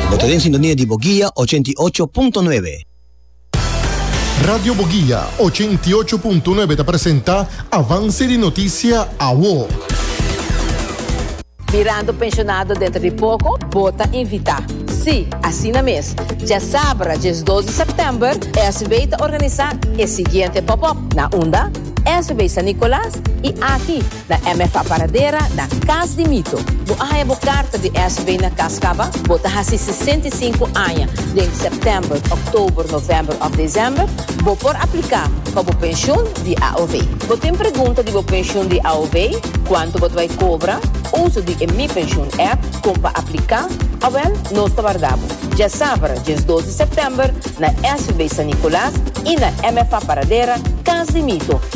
Bo ta den sintonia di Boguia ochenta i ocho punto nuebe. Radio Boguia ochenta i ocho punto nuebe ta presenta Avance di Noticia Awo. Mirando pensionado dentro di poco, bo ta invita. Sí, asina mes. Diasabra diesdos di september, SB ta organisa e siguiente pop-up, na unda? SB San Nicolas y aki. na MFA Paradera, na Cas di Mito. Bo a haña bo karta di SB na kas kaba bo ta hasi sesenta i sinku aña den sèptèmber, òktober, novèmber òf desèmber. Bo por apliká pa bo penshun di AOW. Bo tin pregunta di bo penshun di AOW, kuantu bo ta bai kobra, uso di e Mi Pensioen app, kon pa apliká? Awèl, nos ta warda bo dje sabra, djes dos di sèptèmber, na SB San Nikolaas i na MFA Paradera, Cas di Mito.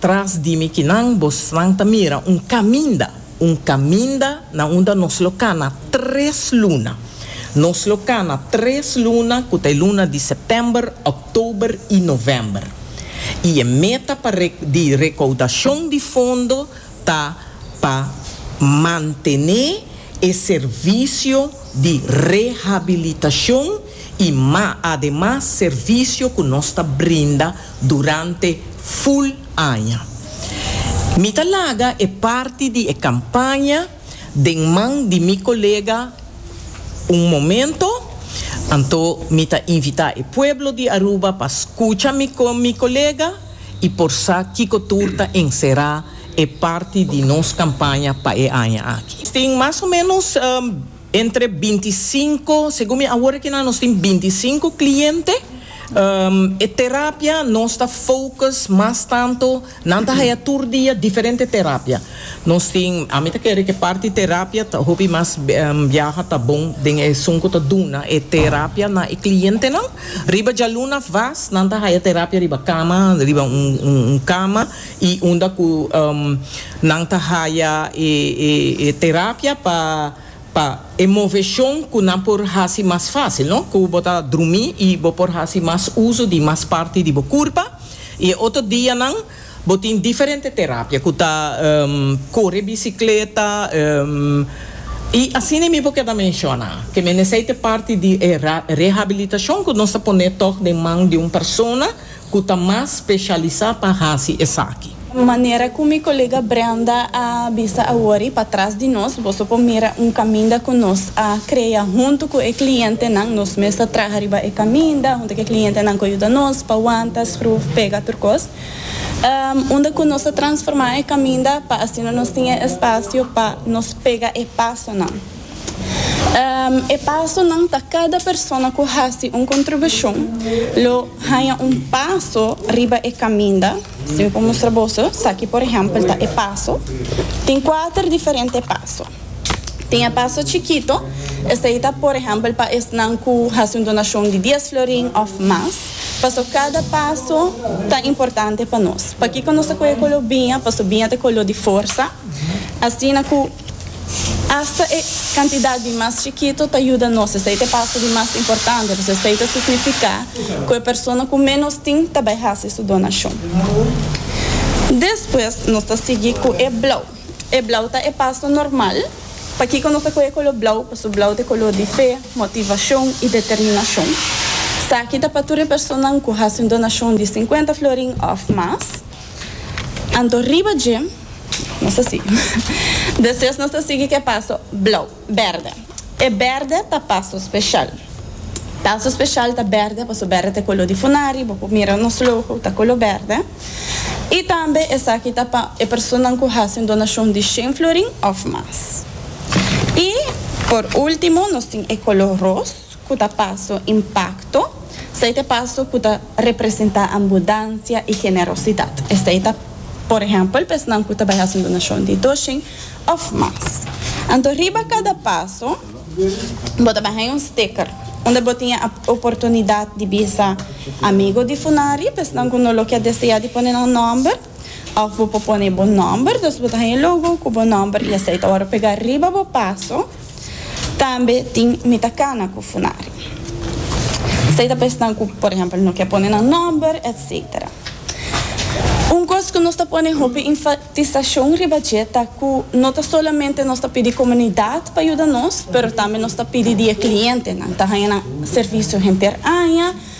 Tras di mi kinan bosnan ta mira un kaminda, un kaminda na unda nos lo kana tres luna. Nos lo kana tres luna ku ta e luna di sèptèmber, òktober i novèmber. I e meta pa re, di rekaudashon di fondo ta pa mantené e servisio di rehabilitashon i ma ademas servisio ku nos ta brinda durante ful aña. Mi ta laga e parti di e campaña den man di mi colega un momento, anto mi ta invita e pueblo di Aruba pa scucha mi mi colega y por sa kico tur ta encera e parti di nos campaña pa e aña aki. Tin mas o menos. Entre binti sinku, segun mi awor aki nan nos tin binti i sinku kliente. E terapia nos ta focus mas tanto, nan ta haya tur dia diferente terapia. Nos tin, ami ta kere ku e parti terapia ta hopi mas biaha ta bon den esun ku ta duna e terapia na e klientenan. Riba djaluna vas nan ta haya terapia riba kama, riba un kama. y unda cu nan ta haya e terapia pa pa e movecion cu nan por haci mas facil, no? Cu bo ta drumi y bo por haci mas uzo di mas parti di bo curpa y e otro dianan bo tin diferente terapia cu ta core bicicleta y asina mi bo keda menciona que mende esey ta parti di e rehabilitacion cu nos ta pone tog den man di un persona ku ta mas speshalisá pa hasi esaki. Manera ku mi kolega Brenda a bisa awor i patras di nos, boso por mira un kaminda ku nos a krea huntu ku e klientenan. Nos mes ta traha riba e kaminda huntu ku e klientenan ku a yuda nos pa wanta, skruf, pega tur kos. Unda ku nos ta transformá e kaminda pa asina nos tin e espasio pa nos pega e pasonan. E pasonan ta kada persona ku hasi un kontribushon lo haña un paso riba e kaminda. Si mi por mustra boso, esaki por ehèmpel ta e paso. Tin kuater diferente paso. Tin e paso chikito, esei ta por ehèmpel pa esnan ku hasi un donashon di dies florin òf mas. Paso kada paso ta importante pa nos. Pakiko nos ta kohe kolo biña? Paso biña ta e kolo di forsa. Asina ku Asta e kantidat di mas chikito ta yuda nos esei ta e paso di mas importante, pues esei ta signifiká ku e persona ku ménos tin ta bai hasi su donashon. Despues nos ta sigui ku e blau. E blau ta e paso normal. Pakiko nos ta kohe koló blau? Paso blau ta e koló di fe, motivashon i determinashon. Esaki ta pa tur e personanan ku hasi un donashon di sinkuenta florin òf mas. Anto riba dje nos ta sigui. Despues nos ta sigui cu e paso blauw, berde. E berde ta paso special. Paso special ta berde paso berde ta e color di funari, bo por mira nos logo ta color berde. Y tambe esaki ta pa e personanan cu haci un donacion di shen florin of mas. Y por ultimo nos tin e color roos. ku ta paso impakto, esei ta paso ku ta representá ambudansia i generosidat. Esei ta, por ehèmpel, pesnan ku ta bai hasi un donashon di dos shin òf mas. Anto riba kada paso bo ta bai haña un sticker unda bo tin e oportunidat di bisa amigu di funari, pesnan ku no lo ke deseá di pone nan nòmber. Òf bo por pone bo nòmber, dus bo ta haña e logo ku bo nòmber i esei ta wòrdu pegá riba bo paso. Tambe tin Mi ta kana ku Funari. Esei ta pa esnan ku por ehèmpel no ke pone nan nòmber, etsetera. Un kos ku nos ta pone hopi enfatisashon riba dje ta ku no ta solamente nos ta pidi komunidat pa yuda nos, pero tambe nos ta pidi di e klientenan ta haña nan servisio henter aña,